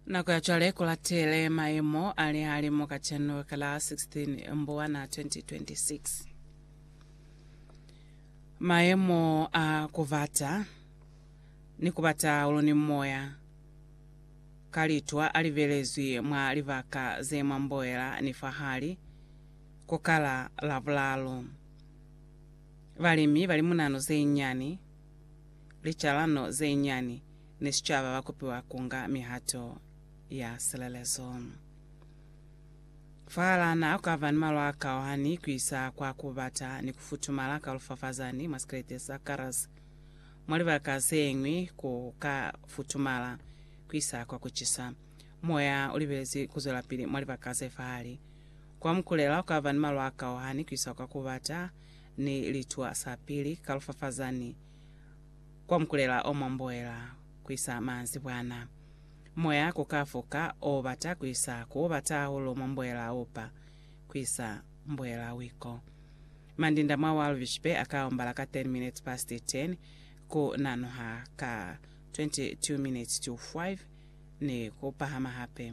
nako ya cwale ku latele maemo a lehalimo kaceno ka la 16 mbuwana 2026 maemo a kubata ni kubata ulo ni moya ka litwa a libelezwi mwa libaka ze mwa mboela ni fahali ku kala labulalo balimi bali munano ze nyani licalano ze nyani ni sicaba ba kopiwa ku nga mihato ya silelezo. Fahalana ha ku ka ba ni malwa a kaohani ku isa kwa ku bata ni ku futumala ka lufafazani mwa sikelete sa Karas, mwa libaka ze ñwi ku ka futumala ku isa kwa ku cisa. Moya u libelezi ku zwelapili mwa libaka ze fahali. Kwa mukulela, ku ka ba ni malwa a kaohani ku isa kwa ku bata Ni litwa sa pili ka lufafaza ni kwa mukulela o mwamboela ku isa manzibwana. Moya ku ka fuka o bata ku isa ku o bata hahulu mwamboela a upa ku isa mboela wiko. Mandinda mwa wa lubishipe a ka ombala ka 10 minutes past 10, ku nanuha ka 22 minutes to 5, ni ku pahama hape.